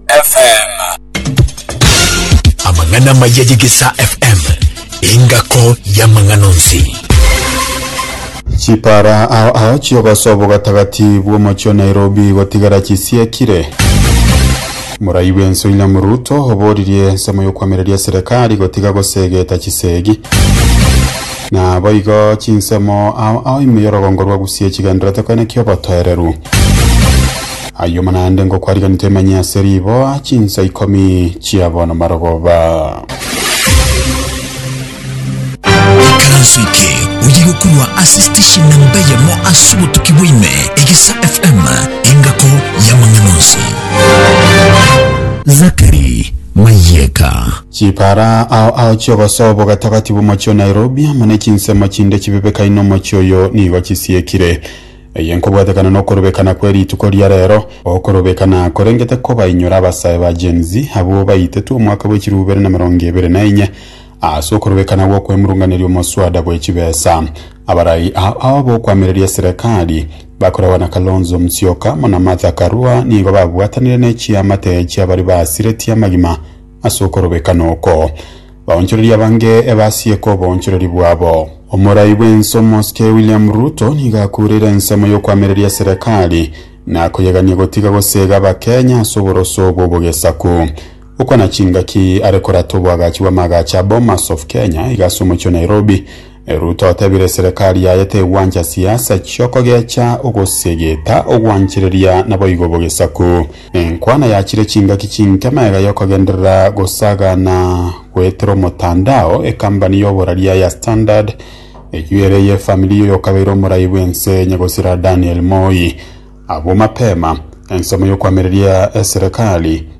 FM. Amang'ana maya y'Egesaa FM, engako y'amang'ana onsi. Chipara ao ao chiogoso bw'ogatagati bw'omochio Nairobi gotigara chisiekire. Morai bw'ense William Ruto oboririe ensemo y'okwamereria serikali gotiga gosegeta chisegi. Na boigo chinsemo ao ao ime y'orogongo rwa Gusii echigenderete koeneki obotoereru. Ayio mana ande ngokwariganete emanye ase riboa chinsa ikomi chia bono marogoba. Ekeranso eke oye gokorwa ase station namba eyemo ase obotuki bwaime, Egesa FM, engako y'amang'ana onsi. Zachary Mayeka. Chipara ao ao chiogosoa obogatagati bw'omochie o Nairobi amo ne chinsemo chinde chibebekaine omochie oyo nigo chisiekire. Eye nkobwatekana nokorobekana kwe rituko ria rero, okorobekana korengete kobainyora abasae ba Gen Z abwo baitetwe omwaka bwe chilifu ibere na emerongo ebere na enye ase okorobekana gwokwemurunganeria omoswada bwe chibesa. Abarai aa aa bokoamereria eserekari bakoragwa na Kalonzo Musyoka amo na Martha Karua nigo babwatanire ne chiamate chiabari basiretie amagima. Ase okorobekana oko, baonchoreri abange ebasieke oboonchoreri bwabo. Omorai bw'ense omosike William Ruto nigo akureire ensemo y'okoamereria serekari na koyegania gotiga gosega abakenya ase oboroso obwo bw'ogesaku. Okwana chingaki are korata obwagachi bw'amaagacho a Bomas of Kenya iga ase omochie o Nairobi, Ruto otebire serekari yaye tegwancha siasa chi'okogecha ogosegeta ogwanchereria naboigo bogesaku. Nenkwana yachire chingaki chinke magega y'okogenderera gosagana goetera omotandao ekambani y'oboraria ya Standard eyio ere ey'efamiri y'oyokabeire omorai bw'ense Nyagosira Daniel Moi. Abwo mapema, ensemo y'okwamereria eserekari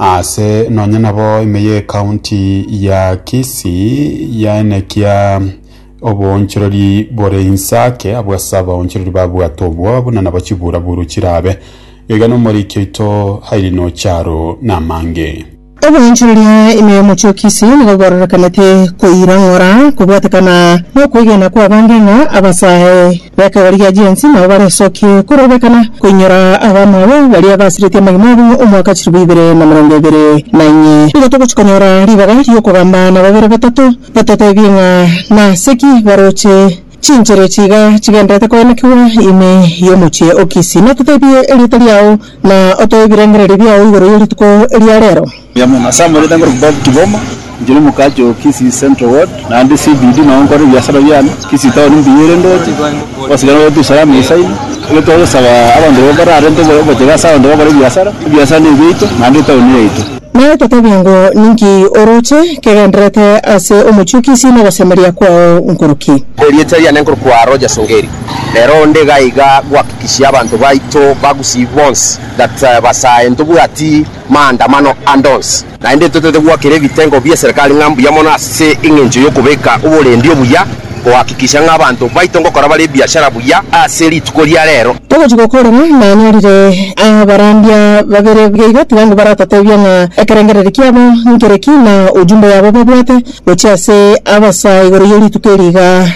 Aase nonya nabo ime y'ecounty ya Kisii yaenekia oboonchorori bore inse ake abwo ase abaonchorori babwate obwoba buna nabo chiburaburu chirabe. Gaiga nomoriki oito Irene Ocharo namange. Oboonchorori aa ime y'omochie o Kisii nigo bwororekanete koirang'ora kobwatekana nokoegena kw'abange ng'a abasae Bakegorigia Jensi, nabo baresokie korobekana koinyora abamwabo baria basiretie amagena abo omwaka chilifu ibere na emerongo ebere na inye. Nigo togochia konyora ribaga ri'okogamba na babere batato batotebie ng'a nase ki baroche chinchera echi iga chigendererete koenekigwa ime y'omochie o Kisi, na ototebie erieta riao, na otoe ebirengererio biao igoro y'erituko eria reero. Nasamorete ngore Bob Kiboma, inchera omokaache o Kisii Central Ward, naende CBD nao nkore ebiasara biane, Kisii Town mbuya ere ndoche, obosigare nabwo Tusalam esaino, ekero twagosaba abanto baria mbararente obochebe ase abanto bakore ebiasara, ebiasara nebiaito naende etown yaito. Naye totebie ng'o, Ninki oroche kegendererete ase omochie o Kisii na ogosemeria kwao nkoro ki? Erieta riane nkoro kwa Rogers Ongeri. Rero onde iga iga gohakikishia abanto baito ba Gusii bonsi that basae ntobwati. maandamano ande onsi. Naende totaete goakera ebitengo bie serikali ng'a mbuya mono ase engencho y'okobeka oborendi obuya, gohakikisha ng'a abanto baito ngokora bare ebiashara buya ase rituko ria reero. Togochia gokora ng'a nanyorire abarandia babere buya iga, tiga ngobaratotebia ng'a ekerengereri kiabo nkere ki, na ojumbe yabo babwate gochia ase abasaa igoro ye rituko eri iga.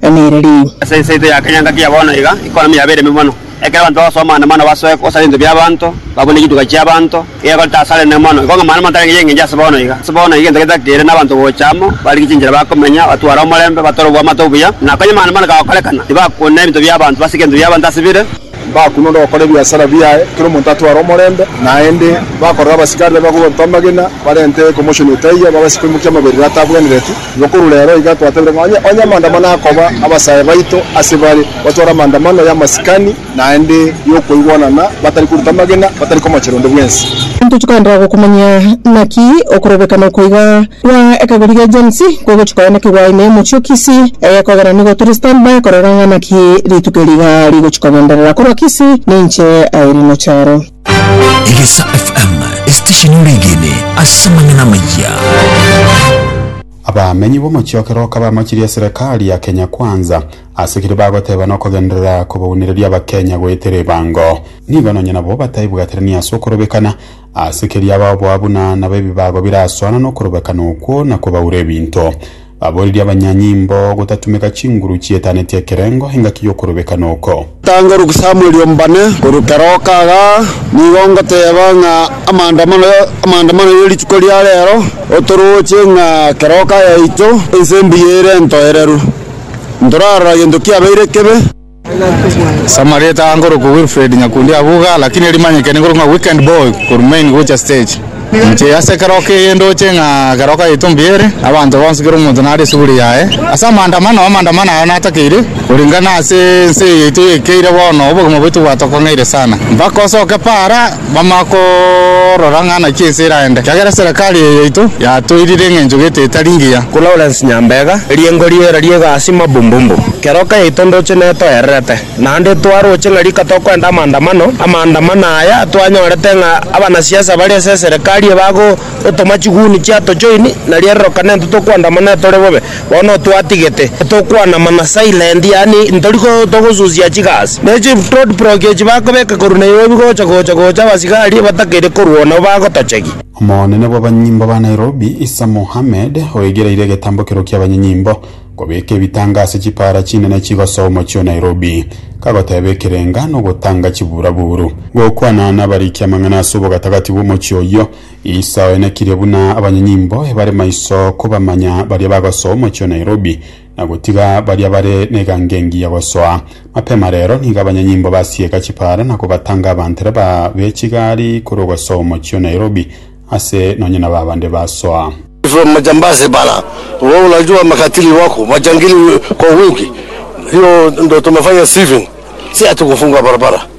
emeeri ri. Ase enseito ya kenyaga kia bono iga, ekonomi yaba ereme mono. Ekero abanto bagosoa amang'ana mana basoe gosara ebinto bi'abanto, babune chituga chi'abanto, iga ekorete asare enene mono. Igo ng'amang'ana motari ng'enye ng'enche ase bono iga. Ase bono iga egento getakeire nabanto gocha amo, barigie chinchera bakomenya, batware omorembe, batore obwamato obuya, na konya amang'ana mana gagokorekana, tibakona ebinto bi'abanto, basike ebinto bi'abanto ase bire, Mbakunwa ndogokora ebiasara biaye, kera omonto atware omorembe naende. Bakorora abasikari babe bakobaruta amagena, barente commotion etaiyo, babase koimokia amaberero atabwenereti. Igo korwa rero iga twatabire ng'a onye onye amaandamano akoba, abasae baito ase bare batware amaandamano y'amasikani naende y'okoigwanana, batari koruta amagena, batari komochera onde bwensi. Intochia kwandagokumanya naki okorobekana oko iga. Bwa ekabere gia Gen-Z kogochi koya naki gwaye ne omochie o Kisii, egekogera nigo tore stand by korora ng'a naki rituko eri iga rigochi kogenderera korwa Kisii ninche aye rino charo. Egesa FM, esitesheni ore egene ase amang'ana amayia. Abamenyi b'omochie o Keroka bamachirie serekari ya Kenya Kwanza ase ekeri bagoteba nokogenderera kobaunereria Abakenya goetera ebango. Nigo nonye nabo bataibwaterani ase okorobekana Ase keria baboa buna nabo ebibago birasoana nokorobekana okwo na kobaura ebinto. Baboririe abanyanyimbo gotatumeka chinguru chietanetie ekerengo engaki y'okorobekana oko. Tanga rusa amorio mbane korwa kera okaga, nigo ngoteba ng'a amaandamano amaandamano ye rituko ria rero otorooche ng'a kera oka yaito ense mbuya ere entoereru, ntorarora gento kiabeire kebe. Ase amarieta aa nkorokwa Wilfred Nyakundi Abuga lakini erimanyekene nkorokwa ng'a Weekend Boy korwa Main gocha Stage. Inche ase ekero keyie ndoche ng'a ekero okagete ombuya ere abanto bonsi kera omonto nare esuguri yaye ase amaandamano, amaandamano aya natakeire korengana ase ense eye yaito ekeire bono obogima bwaito bwatokong'eire sana mpaka osoke paara. Bamanye korora ng'a naki ense eraende, ekiagera eserekari eye yaito yatoirire eng'encho gete etari ngiya. Lawrence Nyambega, Eriengo ri'era ri'egasi Mabumbumbu. Keroka yaito ndoche netoererete, naende twaroche ng'a rika tokoenda amaandamano, amaandamano aya twanyorete ng'a abanasiasa bare ase eserekari ebago. Otoma chiguni chia tochoin na rierorokane intwe tokwandama ne tore bobe. Bono otwatigete. Tokwana mana silent yaani ntori ko togosusia chigasi. Ne chief road block echi bakobeka korwa Nairobi gocha gocha gocha abasigari batakeire korwa nabo bagotochegia. Omonene bw'abanyimbo ba Nairobi, Issa Mohammed, oigereire egetambokero ki'abanynyimbo kobeka ebitanga ase chipaara chinene chigosoa omochie o Nairobi, kagoteeba ekerenga nogotanga chiburaburu. Gokwana nabarikia amang'ana ase obogatagati bw'omochie oyio, Isa oenekirie buna abanyanyimbo ebare maiso kobamanya baria bagosoa omochie o Nairobi na gotiga baria bare negango engiya gosoa. Mapema rero nigo abanyanyimbo basieka chipara na kobatanga abantere ba bechigari korwa ogosoa omochie o Nairobi ase nonye nabo abande basoa. From majambazi bala wewe unajua makatili wako majangili kwa wingi hiyo ndo tumefanya siving si ati kufunga barabara.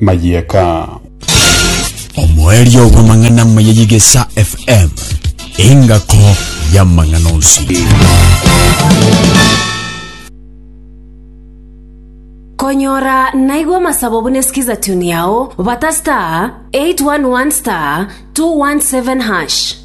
mayieka. Omoerio bw'amang'ana amaya y'Igesa FM, engako y'amang'ana onsi. Konyora naigwa amasabo buna Skiza Tune yao, bata star 811 star 217 hash.